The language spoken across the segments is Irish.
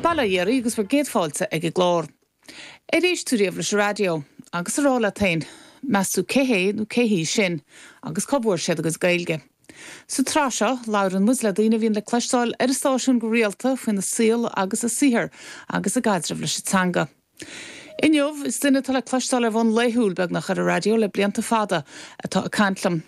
Bail ó Dhia oraibh agus bhur gcéad fáilte ag an gclár. Ar éist tú riamh leis an raidió? Agus a rá leat féin, meas tú cé hé nó cé hí sin? Agus cá bhfuair siad a gcuid Gaeilge? Sa tsraith seo, labhrann muid le daoine a bhíonn le cloisteáil ar an stáisiún go rialta faoina saol agus a saothar agus a gcaidreamh leis an teanga. Inniu, is duine atá le cloisteáil ar bhonn laethúil, beagnach, ar an raidió le blianta fada atá ag caint liom.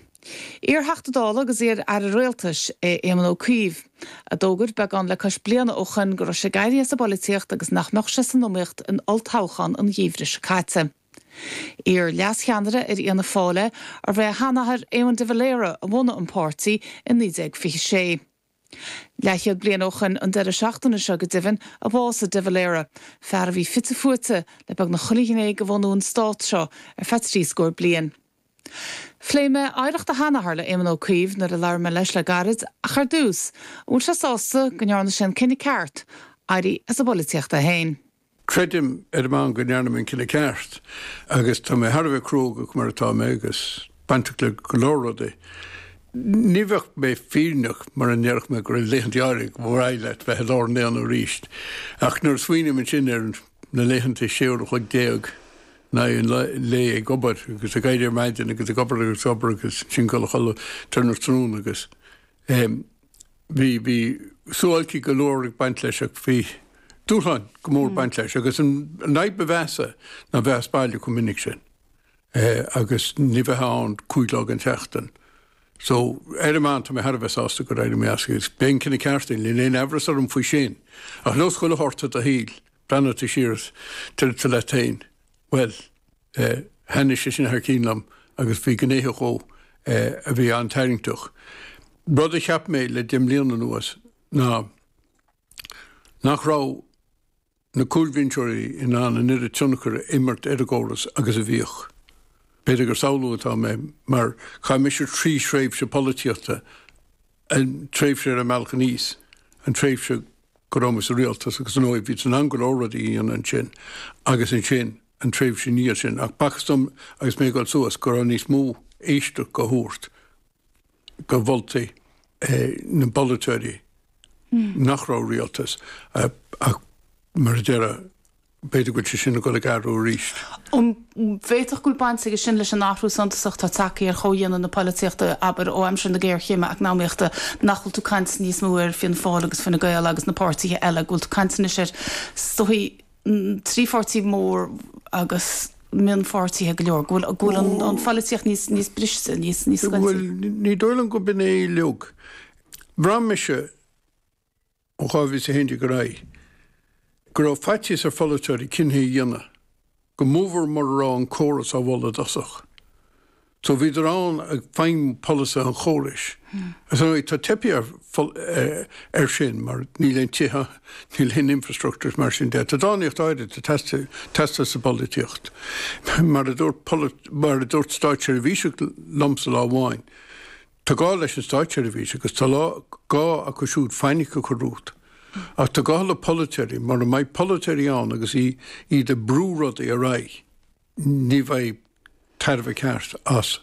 Iar-Theachta Dála agus iar-Aire Rialtais é Éamon Ó Cuív, a d'fhógair, beagán le cois bliana ó shoin, go raibh sé ag éirí as an bpolaitíocht agus nach mbeadh sé san iomaíocht in olltoghchán an gheimhridh seo caite. Iar-leascheannaire ar Fhianna Fáil é, arbh é a sheanathair, Éamon de Valera, a bhunaigh an páirtí i 1926. Leathchéad bliain ó shoin an deireadh seachtaine seo go deimhin a bhásaigh de Valera, fear a bhí fite fuaite le beagnach chuile ghné de bhunú an Stáit seo ar feadh trí scór bliain. Phléigh mé oidhreacht a sheanathar le Éamon Ó Cuív nuair a labhair mé leis le gairid ach ar dtús, an bhfuil sé sásta go ndearna sé an cinneadh ceart, éirí as an bpolaitíocht é féin? Creidim ar an meán go ndearna mé an cinneadh ceart agus tá mé thar a bheith cruógach mar atá mé agus bainteach le go leor rudaí. Ní bheadh mé fírinneach mara ndéarfadh mé go raibh laethanta áirithe arbh mhaith leat bheith i lár an aonaigh arís ach nuair a smaoiním ansin ar na laethanta 16 uair in aghaidh an lae ag obair agus ag éirí ar maidin agus ag obair agus ag obair agus ansin dul a chodladh tráthnóna agus Bhí, bhí suáilcí go leor ag baint leis ach bhí dúshláin go mór ag baint leis agus an fhadhb ba mheasa ná bheith as baile chomh minic sin agus ní bheith ann cúig lá den tseachtain. So ar an meán tá mé thar a bheith sásta gur éirigh mé as agus ba é an cinneadh ceart é, níl aon amhras orm faoi sin. Ach nós chuile shórt i do shaol, Breathnóidh tú siar is déarfaidh tú leat féin, bhuel, thaitnigh sé sin thar cionn liom agus bhí gnéithe dhó a bhí an-tarraingteach. Rud a cheap mé le deich mbliana anuas ná nach raibh na cúlbhinseoirí in ann an oiread tionchair a imirt ar an gcóras agus a bhíodh. B'fhéidir gur samhlú atá mé mar chaith mise trí thréimhse polaitíochta an tréimhse ar an mbealach aníos, an tréimhse go raibh mé sa rialtas agus, ar ndóigh, bhí sé in ann go leor rudaí a dhéanamh ansin, agus ansin, an tréimhse i ndiaidh sin. Ach b'fhacthas dom agus mé ag dul suas go raibh níos mó éisteacht dhá thabhairt do mholtaí na bpolaiteoirí nach raibh rialtas ach, mar a deir. B'fhéidir go bhfuil sé sin ag dul ag athrú arís. An bhféadfadh go bhfuil baint aige sin leis an athrú suntasach atá tagtha ar chomhdhéanamh na polaitíochta, abair, ó aimsir na géarchéime eacnamaíochta? Nach bhfuil tú caint níos mó faoi Fianna Fáil agus Fine Gael agus na páirtithe eile, go bhfuil tú caint anois ar, is dóigh, trí pháirtí mór agus mionpháirtithe go leor, go bhfuil, go bhfuil an pholaitíocht níos, níos briste, níos, níos scoiltí? Bhuel, ní dóigh liom go b'in é uilig. Bhraith mise. ó 2011 ar aghaidh, go raibh faitíos ar pholaiteoirí cinntí a dhéanamh, go mórmhór mura raibh an córas á mholadh i dtosach. So bhíodar ann ag feidhmiú polasaithe an chórais. Ach ar ndóigh, tá teipthe air sin mar níl aon tithe, níl aon infrastructúr is mar sin de. Tá dánaíocht áirid ag teastáil sa bpolaitíocht. Mar a dúirt stáitseirbhíseach liomsa lá amháin, Tá gá leis an stáitseirbhís agus tá gá acu siúd fainic a chur ort. Ach tá gá le polaiteoirí, mura mbeidh polaiteoirí ann agus iad ag brú rudaí ar aghaidh, ní bheidh tairbhe ceart as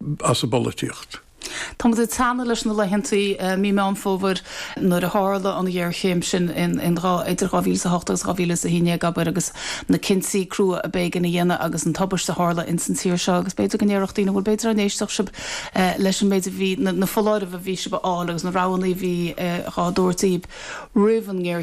an bpolaitíocht. Tá muid ag teannadh leis na laethanta mí Meán Fómhair nuair a tharla an ghéarchéim sin idir 2008 agus 2011, abair, agus na cinntí crua ab éigean a dhéanamh agus an tubaist a tharla insan tír seo agus b'fhéidir go ndéarfadh daoine bhuel b'fhéidir ná n-éistfeadh sibh leis an méid a bhí, na foláirimh a bhí sibh a fháil agus na roghanna a bhí dhá dtabhairt daoibh roimh an ngéarchéim.